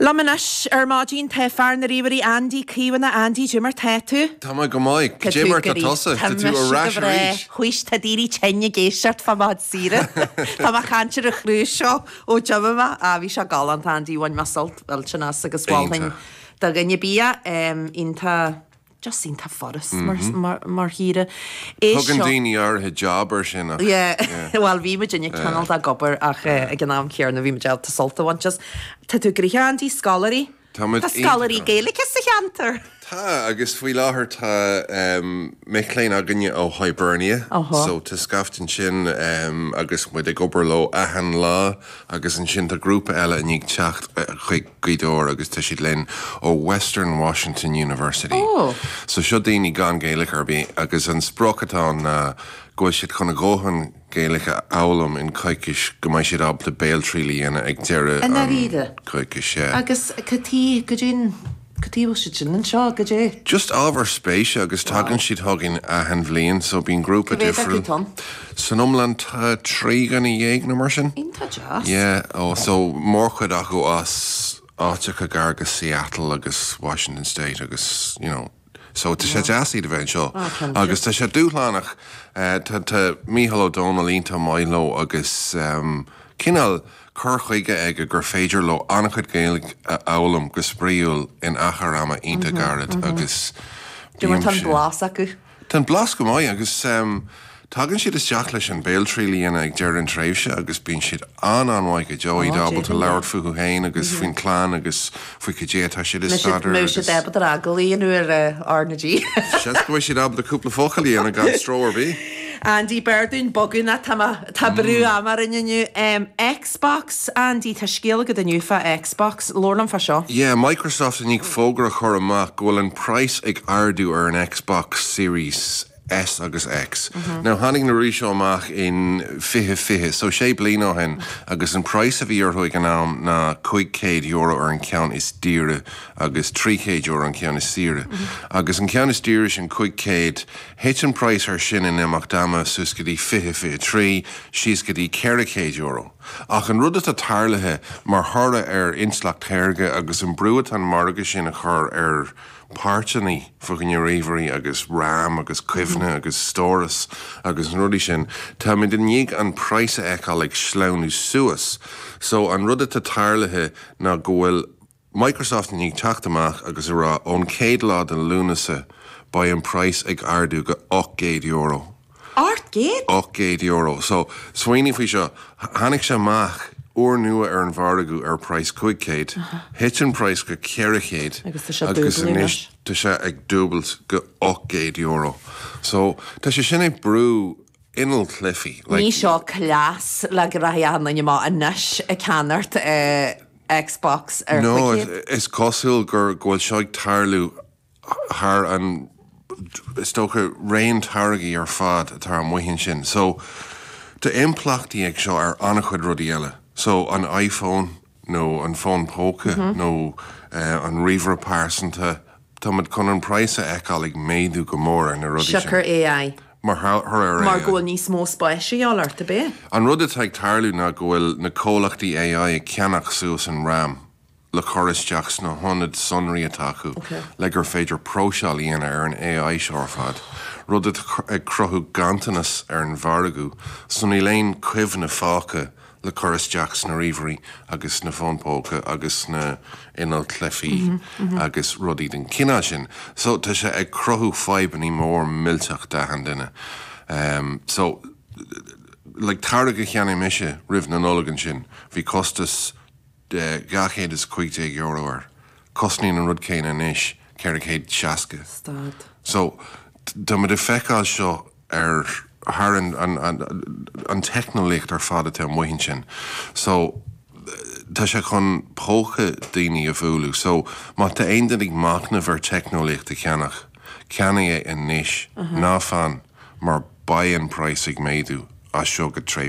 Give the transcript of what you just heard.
Liom anois ar maidin tá fear na ríomhairí Andy Caomhánach, Andy, cad é mar tá tú? Tá mé go maith. Cad é mar tá tusa? Tá mise go breá. Tá tú ar ais arís. Tuise tá daoine tinn ag éisteacht fá mo laethe saoire. Tá mé ag caint ar an chruise seo ó d'imigh mé. Á, bhí sé galánta, Andy, bhain mé sult millteanach as agus mholfainn do dhuine ar bith é. Em, iontach. Just an t-ádh ort is mar shaoire é seo. Tugann daoine áirithe jab air sin ach. Yeah, bhuel bhí muid inné cineál ag obair ach ag an am chéanna bhí muid ábalta sult a bhaint as. Tá tú gnoitheach Andy, scoláirí, tá scoláirí Gaeilge sa cheantar! Tá, agus faoi láthair tá mic léinn againne ó Hibernia so tá scaifte ansin agus muid ag obair leo achan lá agus ansin tá grúpa eile i ndiaidh teacht chuig Gweedore agus tá siad linn ó Western Washington University. Ó! So seo daoine gan Gaeilic ar bith agus an sprioc atá ann ná go bhfuil siad chun a dhóthain Gaeilic a fhoghlaim in coicís go mbeidh siad ábalta béaltriail a dhéanamh ag deireadh an coicís, I ndáiríre? yeah. Agus cad chuige, goidé an, cad chuige a bhfuil siad sin anseo, goidé? Just ábhar spéise agus tagann siad chugainn achan bhliain so bíonn grúpa difriúil. Cé mhéad acu atá ann? San iomlán tá trí dhuine dhéag nó mar sin. Iontach deas. Yeah, eh so mórchuid acu as áiteacha gar go Seattle agus Washington State agus you know so tá sé deas iad a bheith anseo. Ah, cinnte. Agus tá sé dúshlánach. Eh, tá tá Micheál Ó Dónaill iontach maith leo agus ehm, cineál cur chuige aige gur féidir leo an-chuid Gaeilge a fhoghlaim go spraíúil in achar ama iontach gairid agus Dé mar tá an blas acu. Tá an blas go maith agus tagann siad isteach leis an Béaltriail a dhéanamh ag deireadh an tréimhse agus bíonn siad an-an-mhaith go deo, iad ábalta labhairt fúthu féin agus faoina gclann agus faoi cad é atá siad a staidéar agus. Bhí siad ábalta rá go labhróidh siad le R na G. Seans go bhfuil siad ábalta cúpla focal a dhéanamh gan stró ar bith. Andy, b'fhearr dúinn bogadh nó tá brú ama orainn inniu. X. Xbox, Andy, tá scéal agat inniu fá Xbox, labhair liom fá seo. Yeah, Microsoft i ndiaidh fógra a chur amach go bhfuil an praghas ag ardú ar an Xbox Series S agus X. Now tháinig na rudaí seo amach in fiche fiche, so sé bliana ó shin, agus an praghas a bhí orthu ag an am ná cúig chéad euro ar an cheann is daoire agus trí chéad euro an ceann is saoire. Agus an ceann is daoire sin, cúig chéad, Thit an praghas ar sin in imeacht ama suas go dtí 2023, síos go dtí €400. Ach an rud atá tarlaithe mar thoradh ar intleacht shaorga agus an brú atá an margadh sin a chur ar páirteanna fá choinne, ríomhairí agus ram agus cuimhne agus stóras agus na rudaí sin, táimid i ndiaidh an praghas a fheiceáil ag sleamhnú suas. So an rud atá tarlaithe ná go bhfuil. Microsoft ag teacht amach agus ag rá ón chéad lá de Lúnasa beidh an price ag ardú go €800. Ocht gcéad? €800. So, smaoinigh faoi seo, tháinig sé amach úr nua ar an mhargadh ar price cúig chéad, thit an price go ceithre chéad agus anois tá sé ag dúbailt go €800. So, tá sé sin ag brú inneall cluichí. An é seo cleas le go rachaidh achan duine amach anois ag ceannacht. Xbox ar Nó Wicked. is cosúil go bhfuil seo ag tarlú thar an, is dócha, raon táirgí ar fad atá amuigh ansin. So, tá impleachtaí ag seo ar an-chuid rudaí eile. So, an iPhone nó an fón póca nó an ríomhaire pearsanta, Tá muid chun an praghas a fheiceáil ag méadú go mór ar na rudaí sin. Siocair AI. Mar thoradh ar Mar go bhfuil AI. níos mó spáis de dhíth orthu, ab ea? An rud atá ag tarlú ná go bhfuil na comhlachtaí AI ag ceannach suas an ram le cur isteach sna hionaid sonraí atá acu le gur féidir próiseáil a dhéanamh ar an AI seo ar fad, rud atá ag cruthú ganntanas ar an mhargadh so níl aon chuimhne fágtha le cur isteach sna ríomhairí agus sna fóin póca agus sna innill cluichí agus rudaí den chineál sin. So tá sé ag cruthú fadhbannaí móra millteacha d'achan duine. So like táirge a cheannaigh mise roimh na Nollag ansin bhí costas de €215 air. Cosnaíonn an rud céanna anois €460. Stad. So, tá muid ag feiceáil seo ar thar an, an, an, an teicneolaíocht ar fad atá amuigh ansin. So, tá sé chun póca daoine a bhualadh. So, má tá aon duine ag machnamh ar teicneolaíocht a cheannach, ceannaigh é anois. Ná fan, mar beidh an price ag méadú as seo go tréimhse.